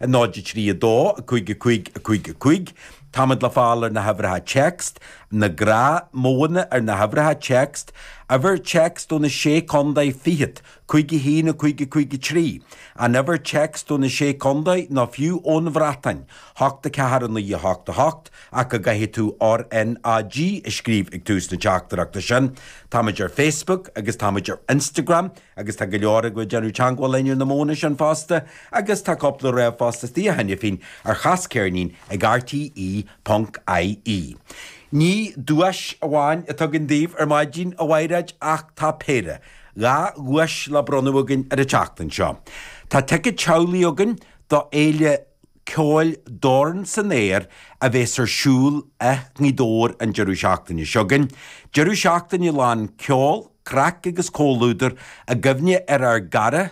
0 3 2 5 5 5 5 Táimid le fáil ar na huimhreacha text, na gnáthmhodhanna ar na huimhreacha text, uimhir text do na Sé Contae fichead, cúig a haon a cúig a cúig a trí, an uimhir text do na Sé Contae nó fiú ón Bhreatáin, hocht a ceathair a naoi a hocht a hocht ach go gcaithfidh tú RNAG a scríobh ag tús na teachtaireachta sin. Táimid ar Facebook agus táimid ar Instagram. Agus tá go leor agaibh ag déanamh teangmháil linn ar na modhanna sin fosta agus tá cúpla ríomhphost istigh cheana féin ar Cas Ceirnín ag rte ponc ie. Ní duais amháin atá againn daoibh ar maidin, a Mhaighreád, ach tá péire, dhá dhuais le bronnadh againn ar an tseachtain seo. Tá ticead teaghlaigh againn do Fhéile Ceoil, Dorn san Aer a bheas ar siúl i nGaoth Dobhair an deireadh seachtaine seo chugainn. Deireadh seachtaine lán ceoil, craic agus comhluadar i gcuimhne ar ár gcara,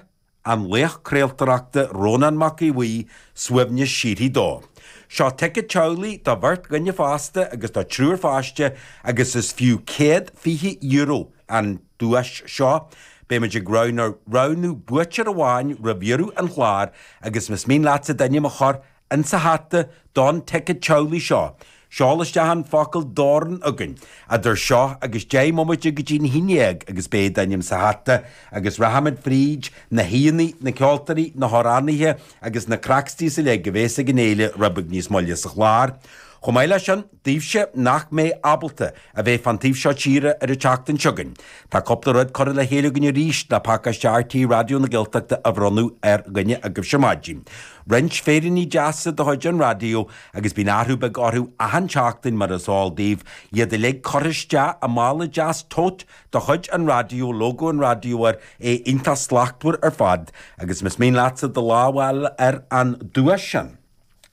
an laoch craoltóireachta Rónán Mac Aodh Bhuí, suaimhneas síoraí dó. Seo ticead teaghlaigh do bheirt dhuine fásta agus do triúr pháiste agus is fiú céad fiche euro. an duais seo. Beimid ag roghnú roghnú buaiteoir amháin roimh dheireadh an chláir agus más mian leatsa d'ainm a chur in sa hata don ticead teaghlaigh seo, seol isteach an focal dorn chugainn idir seo agus 10 mbomaite go dtí'n haon dhéag agus beidh d'ainm sa hata agus rachaimid fríd na haíonna, na ceoltóirí, na hamhránaithe agus na cracksties uilig a bhéas ag an fhéile rud beag níos moille sa chlár. Chomh maith leis sin. daoibhse nach mbeidh ábalta a bheith fán taobh seo tíre ar an tseachtain seo chugainn. Tá cúpla rud curtha le chéile againn arís, le pacáiste RTÉ Raidió na Gaeltachta a bhronnadh ar dhuine agaibhse ar maidin. Roinnt féiríní deasa de chuid an Raidió agus bíonn athrú beag orthu achan tseachtain mar is eol daoibh, iad uilig curtha isteach i mála deas tote de chuid an Raidió, lógó an Raidió air, é iontach slachtmhar ar fad agus más mian leatsa do lámh a fháil ar an duais sin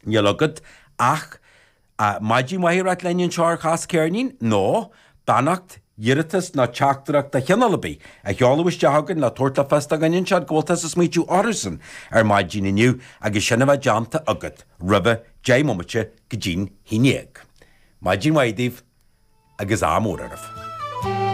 níl agat ach. maidin mhaith a ráit linn anseo ar Cas Ceirnín, nó beannacht, iarratas nó teachtaireacht de chineál ar bith, a sheoladh isteach chugainn le tabhairt le fios do dhaoine anseo go bhfuil tusa ag smaoitiú orthusan ar maidin inniu agus sin a bheith déanta agat roimhe deich mbomaite go dtín haon dhéag. Maidin mhaith daoibh agus ádh mór oraibh.